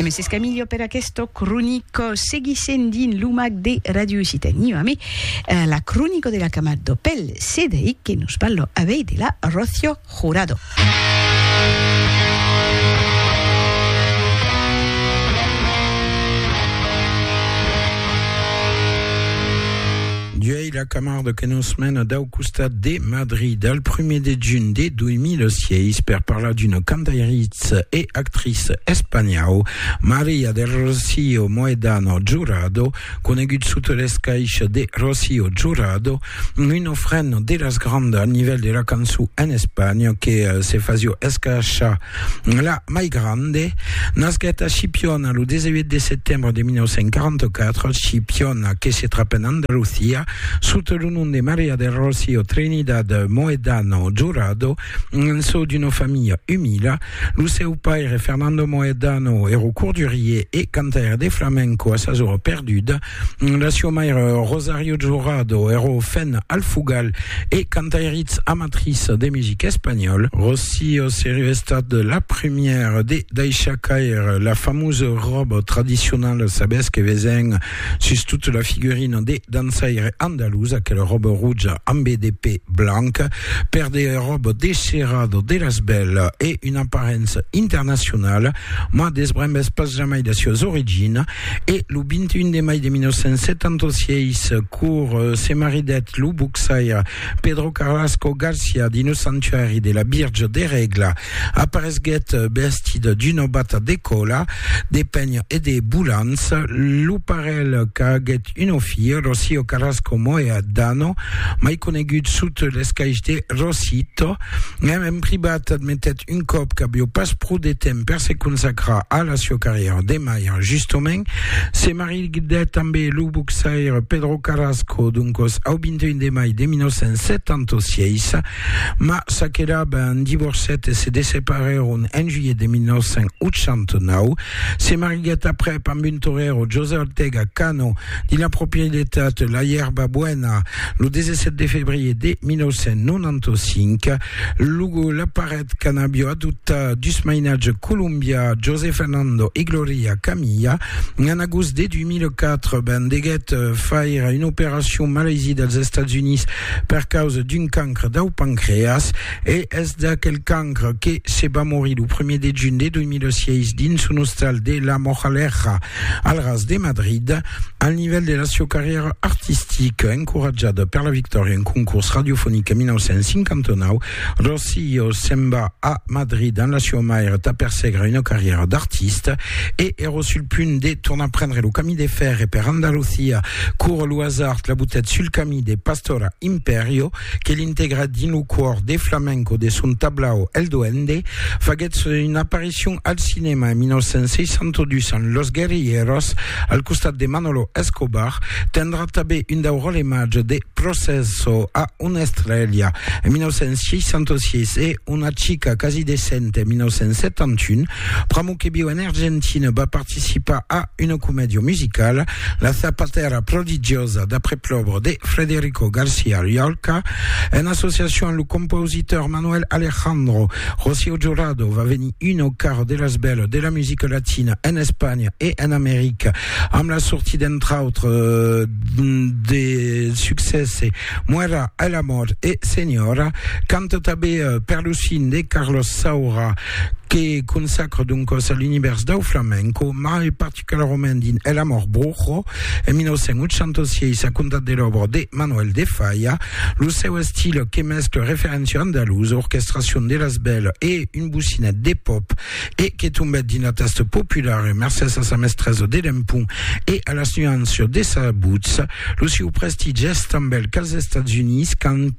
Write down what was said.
Mès es Camillo per aquesto cronico. Seguissem dins lo mag de Ràdio Occitània amé la cronico de la camad do Pel Cedeic que nos parlo avei de la Rocio Jurado. Ela camarda que nos mena dau costat de Madrid al prumèr de junh de 2006 per parlar d'una cantairiça e actriça espanhau, Maria del Rocío Mohedano Jurado, conegut sota l'escaisha de Rocío Jurado, una frena de las grandas al nivèl de la cançon en Espanha que se fasió escaishar La mai grande, nasquèt a Chipiona lo 18 de setembre de 1944, Chipiona, que se trap en Andalucia, sota lo nom de Maria del Rocío Trinidad Mohedano Jurado, en çò d'una familha umila. Lo seu paire, Fernando Mohedano, èra cordurier e cantaire de flamenco a sas ora perduda. La sua maire, Rosario Jurado, ero fen alfugal e cantairitz amatriç de music espanhòl. Rocío seriu estat la primièra de daishar caire la famosa ròba tradicionala, sabètz que vesen sus tota la figurina de dançaire andalús, aquela ròba roja ambe de pè blanc, per de ròba desherada de las bèla e una aparença internacionala, mas desbrembètz pas jamai la suas origina. E lo 21 de mai de 1976, cor se maridèt lo boxaire Pedro Carlasco Garcia dins lo sanctuari de la Virge de Regla. Aparesguèt vestit d'una bata de còla de pènh e de bolants. Lo parelh qu'aguèt una filha, Rocío Carlasco Moya Dano, mai conegut sota l'escaish de Rosito, Mèm en privat admetèt un còp qu'avió pas pro de temps per se consacrar a la sió carrièra de malhar. Justomènt, se maridèt tamb lo boxaire Pedro Carrasco, doncòs au 21 de mai de 1976, mas s'aquelab en divorcèt e se desseparèron en juilhet de 1989. Se mariguèt aprèp amb un torero, José Ortega Cano, dins la proprietat La Ierba Buena, lo 17 de febrier de 1995, lo, la paret qu'an'avió adoptat dus mainatges colombians, José Fernando e Gloria Camilla, en agost de 2004, ben deguèt faire una operacion malaisie dels Estats Units per causa d'un cancre dau pancreas, e es d'aquel cancre que se va morir lo 1er de junh de 2006 dins son ostal de La Moraleja. Al ras de Madrid, al nivèl de la sieu carrièra artistica, encoratjada per la victòria en concors radiofonic en 1959, Rocío se'n va a Madrid amb la sieu maire tà persegrar una carrièra d'artista e èra sul punt de tornar prendre lo camí de fèrre per Andalucia quora lo hasard la butèt sul camí de Pastora Imperio que l'integrèt dins lo còr de flamenco de son tablau El Duende faguèt son apariçon Aparición al cinèma en 1962 en Los Guerrilleros, al costat de Manolo Escobar, tendrà tanben un dau ròle màger de Processo a una estrèlha en 1966 e Una chica casi decente en 1971. Pr'amor que viu en Argentina, va participar a una comèdia musicala, La zapatera prodigiosa, d'après l'òbra de Frederico García Llorca, en associacion amb lo compositor Manuel Alejandro. Rocío Jurado va venir una au carro de las belles de la musica latina en Espanha e en America amb la sortida entre autres de succès Muera el amor e Señora canta tanben per lo cine de Carlos Saura que consacra doncas a l'univers dau flamenco mai particularament particularament dins El amor brujo, en 1986, a comptat de l'òbra de Manuel de Falla, lo seu estil que mescla referéncia andalusa, orquestracion de las bèlas e un bocinet de pòp e que tombèt dins la tasta populara mercés a sa mestresa de l'empont e a las nuanças de sa votz. Lo sieu prestigi es tanben qu'als Estats Units, quand